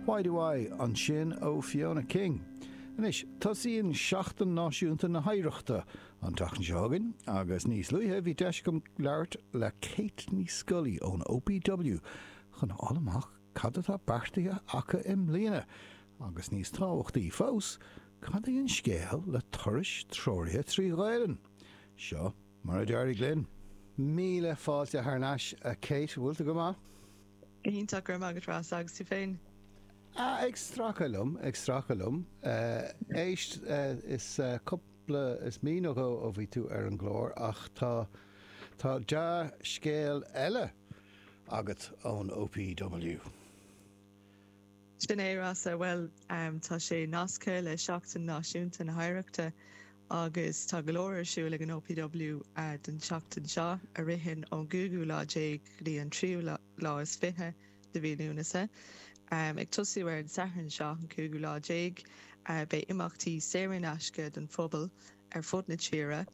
Why do I? ansin ó Fiona King. Anois, tosaíonn Seachtain Náisiúnta na hOidhreachta an tseachtain seo chugainn agus níos luaithe bhí deis agam labhairt le Kate Nic Scolaí ón OPW chun a fháil amach cad atá beartaithe acu i mbliana agus níos tábhachtaí fós, cad é an scéal le turais treoraithe trí Ghaelainn? Seo mar a d'éirigh linn. Míle fáilte thar n-ais, a Kate, bhfuil tú go maith? Go hiontach, go raibh maith agat Rossa agus tú féin? A, ag stracadh liom, ag stracadh liom. Éist, is cúpla, is mí nó dhó ó bhí tú ar an gclár ach tá, tá dea-scéal eile agat ón OPW. Sin é, Rossa. Bhuel, tá sé nasctha le Seachtain Náisiúnta na hOidhreachta agus tá go leor ar siúl ag an OPW don tseachtain seo, a ritheann ón gcúigiú lá déag go dtí an tríú lá is fiche de mhí Lúnasa. Ag tosú ar an Satharn seo, an cúigiú lá déag, beidh imeachtaí saor in aisce don phobal ar fud na tíre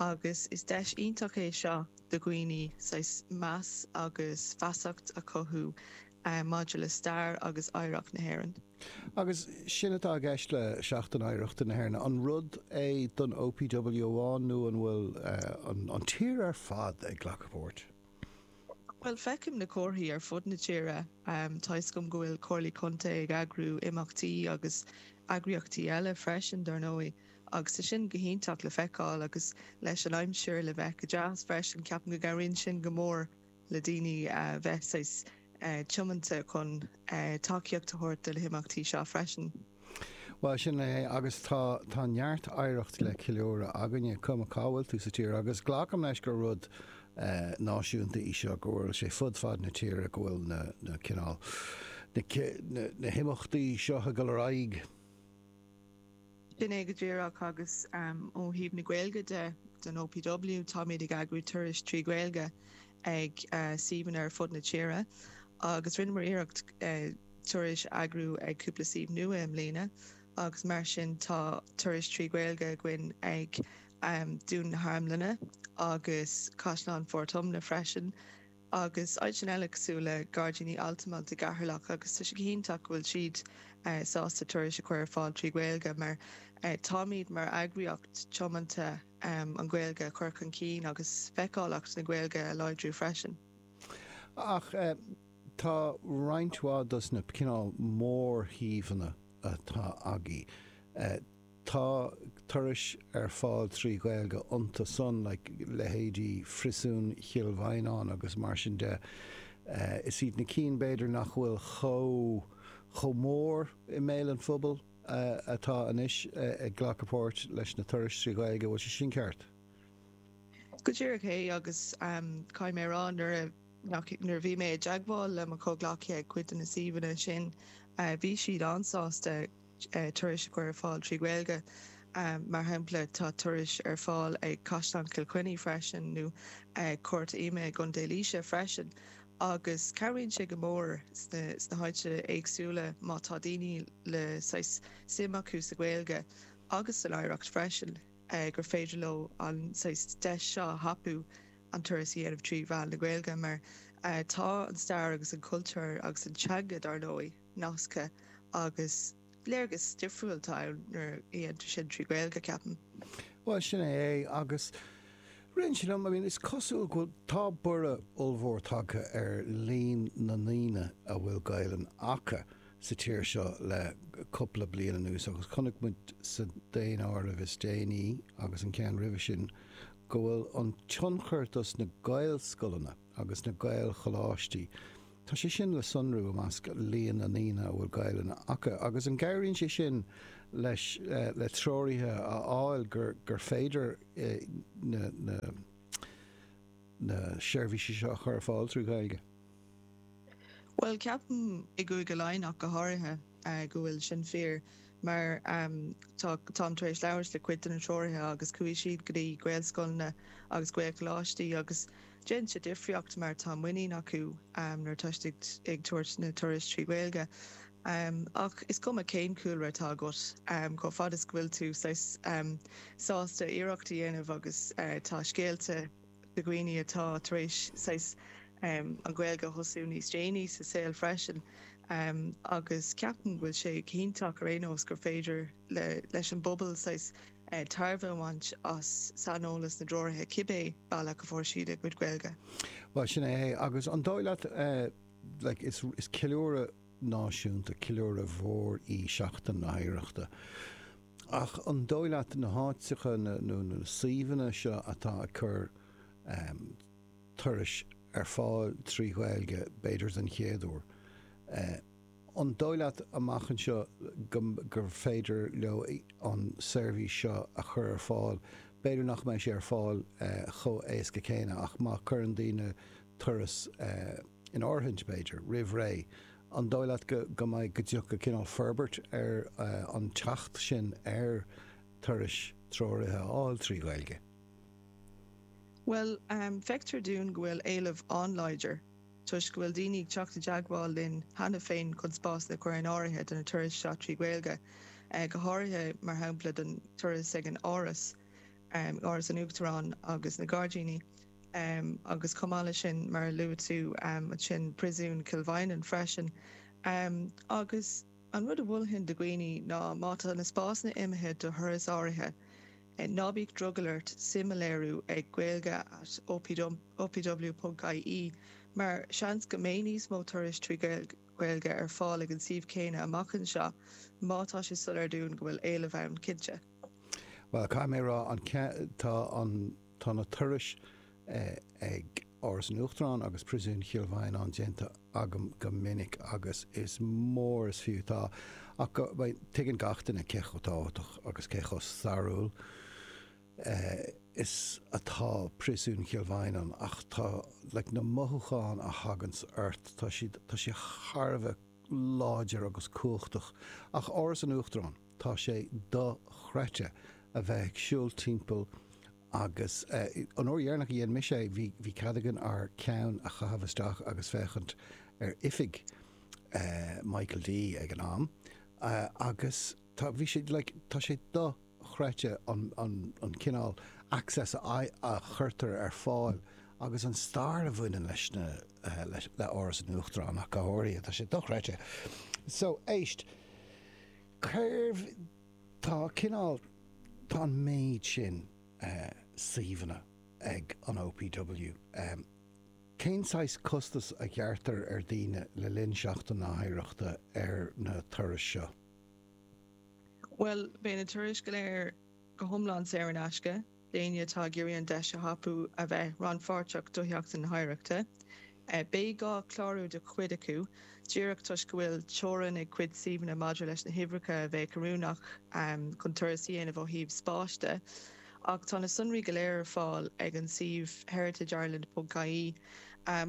agus is deis iontach é seo do dhaoine saghas meas agus feasacht a chothú maidir le stair agus oidhreacht na hÉireann. Agus sin atá i gceist le Seachtain Oidhreachta na hÉireann, an rud é don OPW amháin nó an bhfuil an tír ar fad ag glacadh páirt? Bhuel, feicim na comharthaí ar fud na tíre tuigim go bhfuil Comhairlí Contae ag eagrú imeachtaí agus eagraíochtaí eile freisin dar ndóigh agus tá sé sin go hiontach le feiceáil agus leis an aimsir le bheith go deas freisin ceapaim go gcabhraíonn sin go mór. le daoine a bheith saghas tiomanta chun tacaíocht a thabhairt do na himeachtaí seo freisin. Bhuel, sin é agus tá, tá neart oidhreacht le ceiliúradh againne, cuma cá bhfuil tú sa tír agus glacaim leis gur rud náisiúnta í seo, go bhfuil sé fud fad na tíre, go bhfuil na, na cineál, na, na himeachtaí seo ag dul ar aghaidh. Sin é go díreach agus ó thaobh na Gaeilge de, don OPW, táimid ag eagrú turais trí Ghaeilge ag suíomhanna ar fud na tíre agus rinneamar iarracht turais a eagrú ag cúpla suíomh nua i mbliana agus mar sin tá turais trí Ghaeilge againn ag Dún na hArmlainne agus Caisleán Phort Omna freisin. agus áiteanna eile cosúil le Gairdíní Altamont i gCeatharlach agus tá sé go hiontach go bhfuil siad sásta turais a chur ar fáil trí Ghaeilge mar táimid mar eagraíocht tiomanta an Ghaeilge a chur chun cinn agus feiceálacht na Gaeilge a láidriú freisin. Ach tá roinnt mhaith dos na cineál mórshuíomhanna atá againn. Tá turais ar fáil trí Ghaeilge iontu san, like, leithéidí Phriosún Chill Mhaighneáin agus mar sin de. Is iad na cinn b'fhéidir nach bhfuil chomh mór i mbéal an phobail atá anois ag glacadh páirt leis na turais trí Ghaeilge, an bhfuil sé sin ceart? Go díreach é agus caithfidh mé a rá nuair a bhí mé i dteagmháil le mo chomhghleacaithe ag cuid de na suíomhanna sin bhí siad an-sásta. turais a chur ar fáil trí Ghaeilge. Mar shampla, tá turais ar fáil ag Caisleán Chill Chainnigh freisin, nó ag Cúirt Ioma i gContae Laoise freisin, agus cabhraíonn sé go mór sna háiteanna éagsúla má tá daoine le saghas suim acu sa Ghaeilge agus san oidhreacht freisin, gur féidir leo an saghas deis seo a thapú, an turas a dhéanamh trí mheán na Gaeilge, mar tá an stair agus an cultúr agus an teanga, dar ndóigh. nasctha agus léargas difriúil atá ann nuair a dhéantar sin trí Ghaeilge, ceapaim. Bhuel, sin é é. Agus ritheann sé liom, I mean, is cosúil go bhfuil, tá borradh ollmhór tagtha ar líon na ndaoine a bhfuil Gaelainn acu sa tír seo le cúpla bliain anuas agus chonaic muid sa daonáireamh is déanaí agus an ceann roimhe sin go bhfuil an tionchar dos na Gaelscoileanna agus na Gaelcholáistí. Tá sé sin le sonrú i measc líon na ndaoine a bhfuil Gaelainn acu, agus an gcabhraíonn sé sin leis le treoraithe a fháil gur féidir na seirbhísí seo a chur ar fáil trí Ghaeilge? Bhuel, ceapaim, i gCúige Laighean ach go háirithe, go bhfuil sin fíor. mar tá. Táim tar éis labhairt le cuid de na treoraithe agus chuaigh siad go dtí Gaelscoileanna agus Gaelcholáistí agus déanann sé difríocht mar tá muinín acu nuair atá siad ag tabhairt na turais trí Ghaeilge. Ach is cuma cén cúlra atá agat, chomh fada is go bhfuil tú saghas sásta iarracht a dhéanamh agus tá scéalta, de dhaoine atá tar éis saghas an Ghaeilge a thosú níos déanaí sa saol freisin agus ceapaim go bhfuil sé go hiontach ar aon nós gur féidir leis an bpobal saghas tairbhe a bhaint as saineolas na dtreoraithe cibé bealach a fuair siad a gcuid Gaeilge. Bhuel, sin é é. Agus an dóigh leat, like, is ceiliúradh. náisiúnta. Ceiliúradh mhór í Seachtain na hOidhreachta ach an dóigh leat na háiteacha nó na suíomhanna seo atá ag cur turais ar fáil trí Ghaeilge, b'fhéidir den chéad uair, an dóigh leat amach anseo gur féidir leo an seirbhís seo a chur ar fáil, b'fhéidir nach mbeidh sé ar fáil chomh héasca céanna ach má chuireann daoine turas. in áirithe, b'fhéidir, roimh ré, an dóigh leat go go mbeidh go dtiocfaidh cineál forbairt ar an tseachtain ar turais treoraithe a fháil trí Ghaeilge? Bhuel, feictear dúinn go bhfuil éileamh an-láidir toisc go bhfuil daoine ag teacht i dteagmháil linn cheana féin chun spásanna a chur in áirithe do na turais seo trí Ghaeilge, go háirithe, mar shampla, don turas ag an Áras, Áras an Uachtaráin agus na Gairdíní. agus chomh maith leis sin, mar a luaigh tú ansin, Príosún Chill Mhaighneáin freisin. Agus an rud a mholfainn do dhaoine ná má tá na spásanna imithe do thuras áirithe, ná bíodh drogall ort suim a léiriú ag gaeilge at opw ponc ie mar seans go mbeidh níos mó turais trí Ghaeilge ar fáil ag an suíomh céanna amach anseo, má tá sé soiléir dúinn go bhfuil éileamh ann, cinnte. Bhuel, caithfidh mé a rá, tá an. Tá na turais ag Áras an Uachtaráin agus Príosún Chill Mhaighneáin déanta agam go minic agus is mór is fiú atá. Ach tuigeann gach duine cé chomh tábhachtach agus cé chomh stairiúil is atá Príosún Chill Mhaighneáin ach tá like na mothúcháin a thagann ort tá siad tá sé thar a bheith láidir agus cumhachtach. Ach Áras an Uachtaráin? Tá sé do-chreidte a bheith ag siúl timpeall agus an uair dheireanach a dhein mise é bhí cead againn ár ceann a chaitheamh isteach agus féachaint ar oifig Michael D ag an am agus tá bhí sé like tá sé do-chreidte an an an cineál access a a chuirtear ar fáil agus an stair a bhaineann leis an le Áras an Uachtaráin ach go háirithe tá sé do-chreidte. So éist. Cérbh Tá cineál, tá an méid sin suíomhanna ag an OPW. Cén saghas costas a ghearrtar ar dhaoine le linn Sheachtain na hOidhreachta ar na turais seo? Bhuel, beidh na turais go léir go hiomlán saor in aisce. d'éinne atá ag iarraidh an deis a thapú a bheith rannpháirteach do Sheachtain na hOidhreachta. Beidh gá clárú do chuid acu díreach toisc go bhfuil teorainn ag cuid suíomhanna maidir leis na huimhreacha a bheadh oiriúnach chun turas a dhéanamh ó thaobh spáis de, ach tá na sonraí go léir ar fáil ag an suíomh heritageireland ponc ie.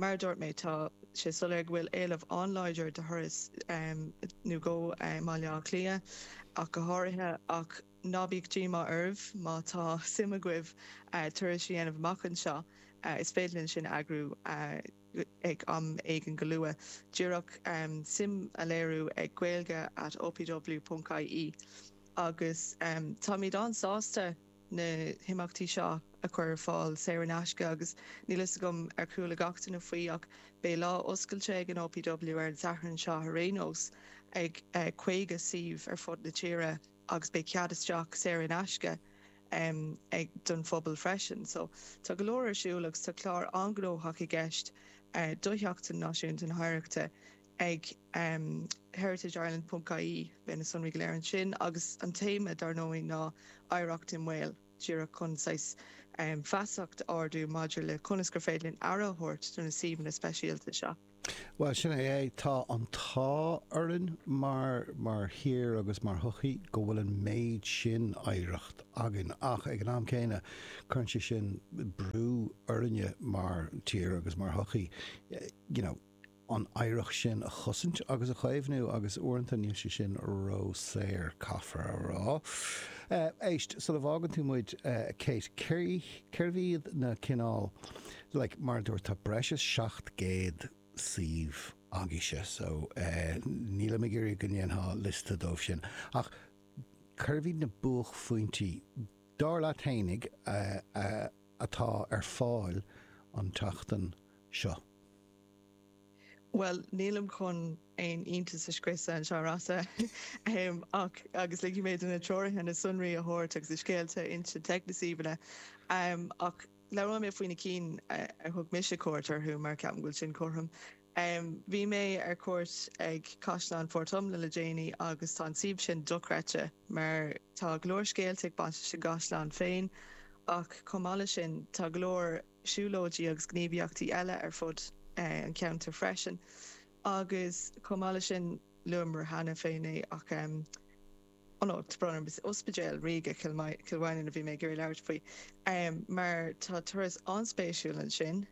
Mar a dúirt mé, tá sé soiléir go bhfuil éileamh an-láidir do thurais i mBaile Átha Cliath ach go háirithe, ach. Ná bíodh díomá oraibh má tá suim agaibh turas a dhéanamh amach anseo. Is féidir linn sin a eagrú ag am éigin go luath. Díreach suim a léiriú ag gaeilge at opw.ie agus táimid an-sásta na himeachtaí seo a chur ar fáil saor in aisce agus níl fhios agam ar chuala gach duine faoi ach beidh lá oscailte ag an OPW ar an Satharn seo ar aon nós ag 50 suíomh ar fud na tíre. agus beidh cead isteach saor in aisce don phobal freisin. So tá go leor ar siúl agus tá clár an-gnóthach i gceist do Sheachtain Náisiúnta na hOidhreachta ag heritageireland.ie. Beidh na sonraí go léir ansin agus an téama dár ndóigh ná Oidhreacht i mBaol, díreach chun saghas feasacht a ardú maidir le conas gur féidir linn aire a thabhairt do na suíomhanna speisialta seo. Bhuel, sin é é. Tá an t-ádh orainn mar mar thír agus mar shochaí go bhfuil an méid sin oidhreacht againn ach, ag an am céanna, cuireann sé sin brú orainne mar thír agus mar shochaí you know an oidhreacht sin a chosaint agus a chaomhnú agus uaireanta níl sé sin ró-saor, caithfear a rá. Éist, sula bhfágann tú muid, a Kate, cérbh iad na cineál. like mar a dúirt tá breis is 700 suíomh agaíse so nílim ag iarraidh go ndéanfá liosta dóibh sin ach cérbh iad na buaicphointí dar leat fhéinig atá ar fáil an tseachtain seo? Bhuel nílim chun aon iontas a scriosadh anseo Rossa ach agus ligfidh mé do na treoraithe na sonraí a thabhairt agus na scéalta a insint ag na suíomhanna ach Labhróidh mé faoi na cinn ar thug mise cuairt orthu mar ceapaim go bhfuil sin cothrom. Bhí mé ar cuairt ag Caisleán Phort Omna le déanaí agus tá an suíomh sin dochreidte mar tá go leor scéalta ag baint leis an gcaisleán féin ach chomh maith leis sin tá go leor siúlóidí agus gníomhaíochtaí eile ar fud an cheantair freisin agus chomh maith leis sin luamar cheana féin é ach Ionad Bhrú na Bóinne is Ospidéal Ríoga Chill Mhaighneann a bhí mé ag iarraidh labhairt faoi mar tá turas an-spéisiúil ansin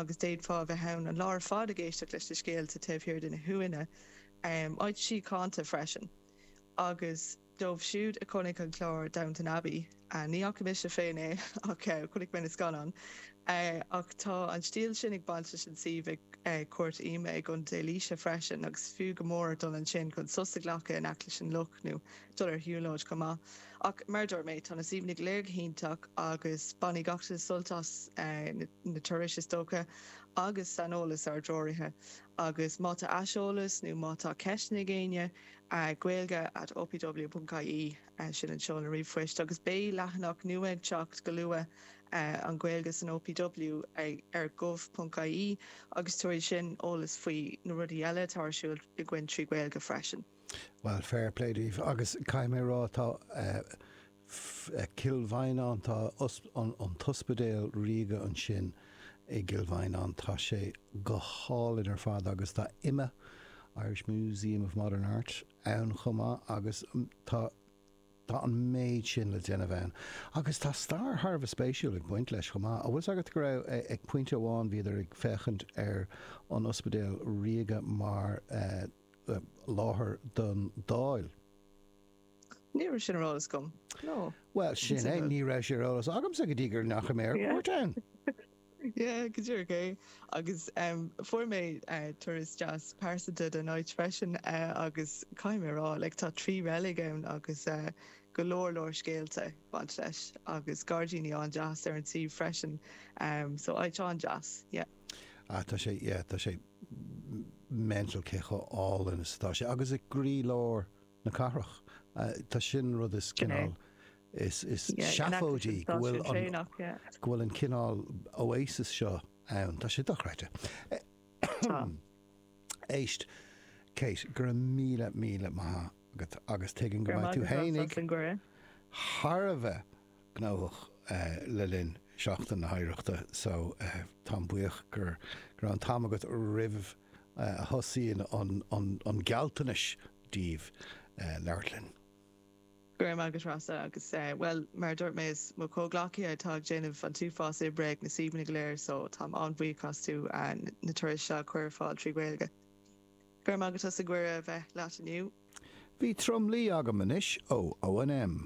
agus d'fhéadfá a bheith ann an lá ar fad ag éisteacht leis na scéalta taobh thiar de na huaine áit síochánta freisin agus dóibh siúd a chonaic an clár Downton Abbey a. Ní fhaca mise féin é ach chonaic mé na scannáin. Ach tá an stíl sin ag baint leis an suíomh ag Cúirt Ioma i gContae Laoise freisin agus b'fhiú go mór dul ansin chun sos a ghlacadh in aice leis an loch nó dul ar shiúlóid chomh maith. Ach mar a dúirt mé, tá na suíomhanna go léir go hiontach agus bainfidh gach duine sult as na turais is dócha agus saineolas ár dtreoraithe. Agus má tá aiseolas nó má tá ceisteanna ag éinne, gaeilge at opw.ie. Sin an seoladh ríomhphoist agus beidh leathanach nua ag teacht go luath, An Ghaeilge san OPW, ar gov ponc ie agus tabharfaidh sin eolas faoi na rudaí eile atá ar siúl againn trí Ghaeilge freisin. Bhuel, fair play daoibh agus caithfidh mé a rá, tá Cill Mhaighneáin, tá an tOspidéal Ríoga ansin i gCill Mhaighneáin, tá sé go hálainn ar fad agus tá IMMA, Irish Museum of Modern Art, ann chomh maith agus tá tá an méid sin le déanamh ann. Agus tá stair thar a bheith spéisiúil ag baint leis chomh maith. An bhfuil 's agat go raibh, ag pointe amháin bhíodar ag féachaint ar an Ospidéal Ríoga mar láthair don Dáil? Ní raibh sin ar eolas agam. No. Bhuel, sin é, ní raibh sé ar eolas agamsa go dtí gur ndeachaigh mé ar cuairt ann. Yeah, go díreach é. Agus em fuair mé eh turas deas pearsanta den áit freisin eh agus caithfidh mé a rá like tá trí reilig ann agus eh go leor leor scéalta ag baint leis agus gairdíní an-deas ar an suíomh freisin em so áit an-deas, yeah. Ah tá sé yeah tá sé m- m- mental cé chomh álainn is atá sé agus i gcroílár na cathrach. Tá, sin an rud is cineál is seafóidí go bhfuil an cineál oasis seo ann. Tá sé dochreidte. Tá. Éist, Kate, go raibh míle, míle maith agat agus tuigim go mbeidh tú fhéinig thar a bheith gnóthach le linn Seachtain na hOidhreachta so táim buíoch go raibh an t-am agat roimh a thosaíonn an gealltanais daoibh labhairt linn. Go raibh maith agat a Rossa agus, bhuel, mar a dúirt mé is mo chomhghleacaithe atá ag déanamh an t-uafás oibre ag na suíomhanna go léir so táim an-bhuíoch astu na turais seo a chur ar fáil trí Ghaeilge. Go raibh maith agat as an gcuireadh a bheith leat inniu. Beidh tromluí agam anois ó ONM.